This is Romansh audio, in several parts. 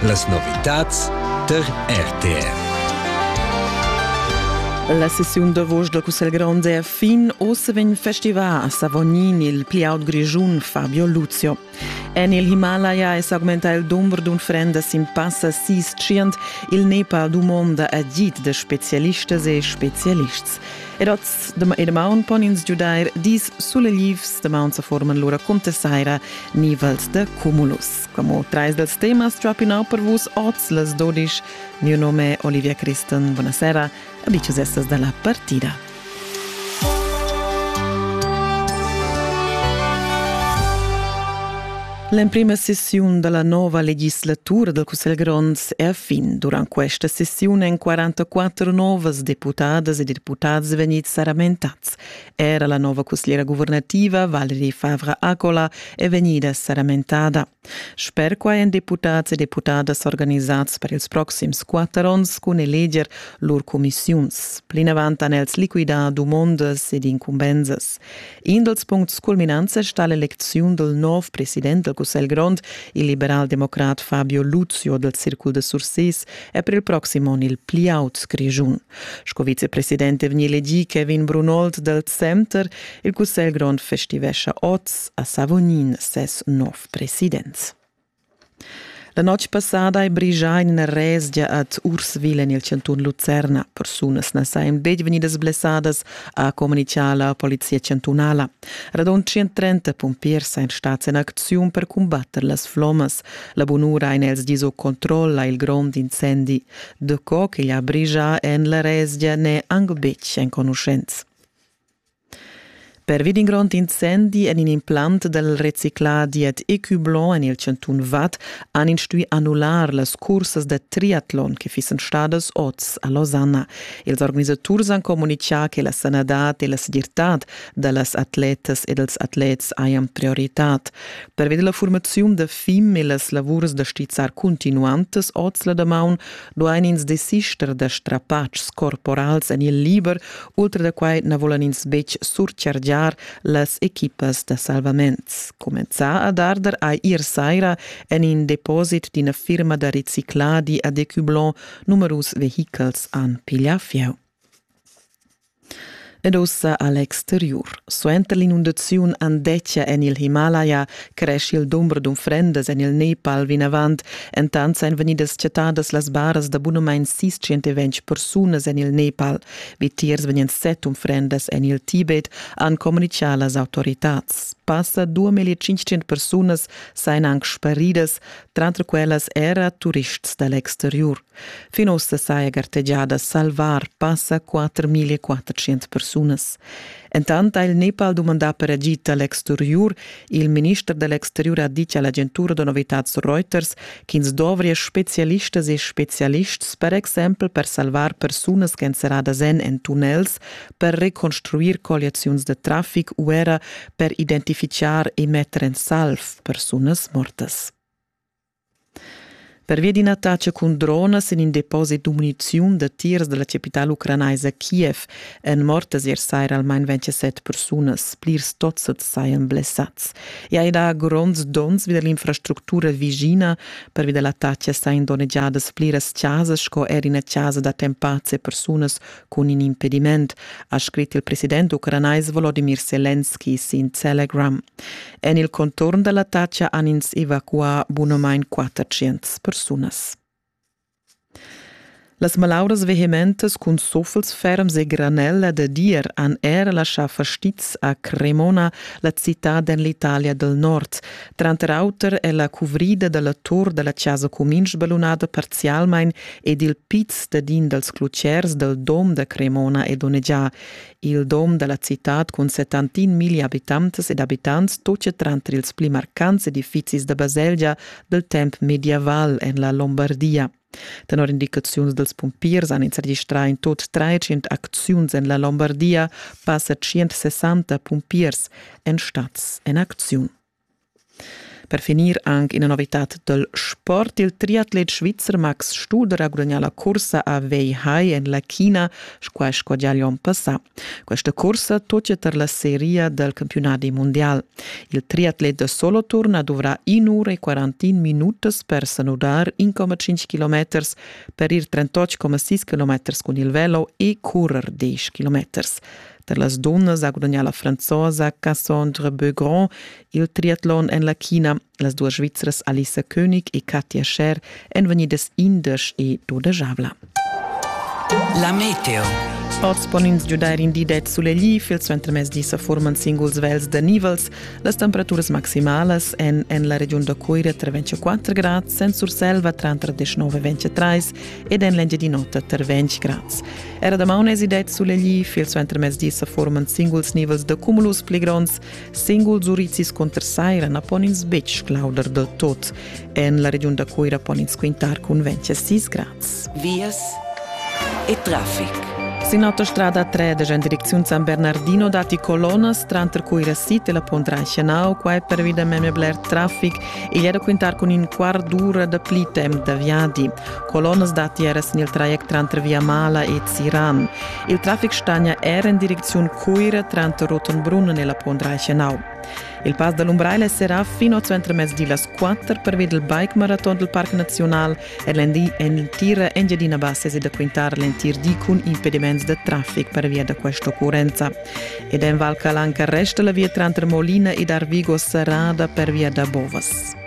Las novitads tar RTR. La sessiun davos da Cussel Grande è fin. Ossa vegn festival a Savognin il pli aut grischun Fabio Luzio. En il Himalaya è s'augmenta il dumber d'unfrendas sin passa sis tschient. Il Nepal dumonda agid da spezialistas e spezialists. Ed oz e damaun pon ins giudair dis suleglivs, damaun sa forman lura cunter saira nivels de cumulus. Como trais dels temas trapinau per vus oz les dodisch. Mio nome Olivia Christen, buonasera, abicius estas da la partida. L'emprima sessiun dalla nova legislatura dal Cussegl grond è a fin. Durant questa sessiun èn 44 novas deputadas e deputads vegnids saramentads. Era la nova cussiera guvernativa Valerie Favre-Accola è vegnida saramentada. Sper quai èn deputads e deputadas organisads per ils proxims quatter onns cun eleger lur cumissiuns. Plinavant han els liquidà dumondas ed incumbensas. In dals puncts culminants è stà l'elecziun dal nov president dal Cussegl grond, il liberaldemocrat Fabio Luzio dal Circul de Sursis, è per il proxim onn il pli aut Grischun. Sco vicepresident è vegnì elegì Kevin Brunold dal Center. Il Cussegl grond festivescha oz a Savognin ses nov president. La notg passada hai brigià in ina resgia ad Urswil en il chantun Lucerna. Persunas na sajan betg vegnidas blessadas, ha communitgà la polizia chantunala. Radund 130 pumpiers sajan stads en acziun per cumbatter las flommas. La bunura en els di sut controll ha il grond incendi. Daco ch'igl ha brigià en la resgia n'è anc betg enconuschents. Pervi d'in grond incendi en in implant dal reciclà dad Ecublon en il chantun Vad han ins stuì annullar las cursas da triatlon che fissan stadas oz a Losanna. Ils organisaturs han communitgà che la sanadad e la segirtad da las atletas e dals atlets hajan prioritad. Pervi da la formaziun da FIM e las lavurs da stizzar cuntinuantas oz la damaun duain ins desister da strapatschs corporals en il liber, ultra da quai na vulan ins betg surchargiar las equipas da salvaments. Cumenzà ad arder ha ier saira en in deposit d'ina firma da recicladi a Decublon numerus vehichels han piglià fieu. Ed ussa a l'exteriur. Suenter l'inundaziun Andetgia en il Himalaya cresci il dumber d'unfrendas en il Nepal vinavant. Entant èn vegnidas chattadas las baras da bunamain 620 persunas en il Nepal. Vitiers vegnan set unfrendas en il Tibet, han communitgà las autoritads. Passa 2500 persunas sajan anc sparidas, tranter quellas era turists da l'exteriur. Fin ussa saja gartegià da salvar passa 4.400 persunas. Entant ha il Nepal dumandà per agid da l'exteriur. Il minister da l'exteriur ha ditg a l'agentura da novitads Reuters ch'ins dovria spezialistas e spezialists per exempel per salvar persunas ch'èn serradas en en tunnels, per reconstruir colliaziuns da traffic u era per identifichar e metter en salv persunas mortas. Pervia d'ina attacha cun dronas en in deposit da muniziun da tiers da la capitala ucranaisa Kiev èn mortas ier saira almain 27 persunas. Plirs tozzads sajan blessads. I hai dà gronds donns vi da l'infrastructura vischina. Pervi da l'attacha sajan donnegiadas pliras chasas sco er ina chasa d'attempads e persunas Cun in impediment, ha scrit il president ucranais Volodimir Selenski sin Telegram. En il conturn dalla Taccia han ins evacuà bunamain 400 persunas. Las malauras vehementas cun suffels ferms e granella da dir han er laschà fastiz a Cremona, la citad en l'Italia del Nord. Tranter auter è la cuvrida da la tur da la chasa cumin sbalunada parzialmain ed il piz dadin dals clutgers dal dom da Cremona è donnegià. Il dom da la citad cun 71 miglia abitantas ed abitants tocia tranter ils pli marcants edifizis da baselgia dal temp medieval en la Lombardia. Tenor indicaziuns dals pumpiers han ins registrà in tot trecient acziuns en la Lombardia. Passa 160 pumpiers èn stads en acziun. Per finir anche una novità del sport. Il triatlet svizzer Max Studer ha guadagnato la corsa a Weihai en la China, squai sco già l'onn passà. Questa cursa tutga tar la seria dal campiunadi mundial. Il triatlet da soloturn ha duvrà 1 ura e 41 minutas per sanudar 1,5 km per ir 38,6 km cun il velo e currer 10 km. Per las dunnas ha gudagnà la franzosa Cassandre Beaugrand Il triatlon en la China, las duas svizras Alisa König e Katja Scher èn vegnidas indesch e dodajavla. La meteo. Oz pon ins giudair in di ded sulegl, il suentermezdi sa forman singuls vels da nivels. Las temperaturas maximalas èn en la regiun da Coira tra 24 grads, en Surselva tranter 19 e 23 ed en l'Engiadin'Ota tar 20 grads. Era damaun esì ded sulegl, il suentermezdi sa forman singuls nivels da cumulus pli gronds. Singuls urizis conter saira na pon ins betg clauder del tot. En la regiun da Cuira pon ins quintar cun 26 grads. Vias e traffic. Sin autostrada 13 en direcziun San Bernardino datti colonas tranter Cuira City e la Pondra Schenau. Qua è pervi da memia bler traffic. Igl è da quintar cun in quart d'ura da pli temp da viadi. Colonas datti era sin il traject tranter Via Mala e Ziran. Il traffic stagna er en direcziun Cuira tranter Rotenbrunnen e la Pondraiche Nau. Il Pass da l'Umbraila serà fin oz entremezdi las 4 pervi dal bike-maraton dal Parc Naziunal e l'endì en l'entira Engiadina Bassa e da quintar l'entir di cun impediments da traffic pervia da questa occurrenza. Ed en Val Calanca resta la via tranter Molina ed Arvigo serrada pervia da bovas.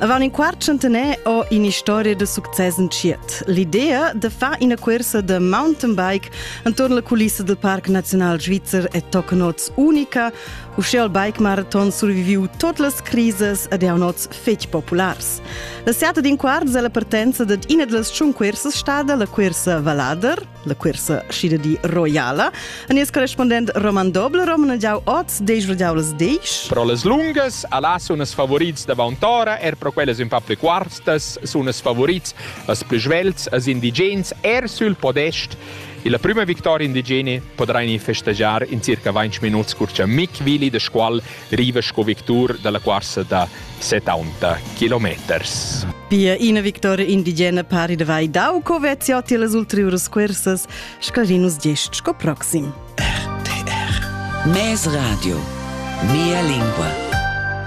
Avant in quart centenaire ho un'historia de succes entschiet. L'idea de far una corsa de mountain bike intorno la culissa del Parc Nacional Svizzer è tocca nots unica, uscè al bike marathon surviviu tot las crises ed è nots fetg populars. La seata d'in quart della partenza de ina delle tschun cursas stada la cursa Valader, la cuersa schida di roiala. A nies correspondent Roman Doble, Roman jau oz, deis radiaulas deis. Pro las lungas, ala sun es favorits davant'ora, er pro quellas ün pa pli quarstas sun es favorits as plü svelts as indigens, er sül podest. E la prima victoria indigeni podrà festeggiar in circa 20 minuts cur cha Mick Willi de Scuol riva sco victur dalla cuorsa da 70 kilometers. Pia ina victoria indigena pari da vai dau co veziotti las ulteriuras cursas scarinos gest sco proxim. RTR Mes Radio Mia lingua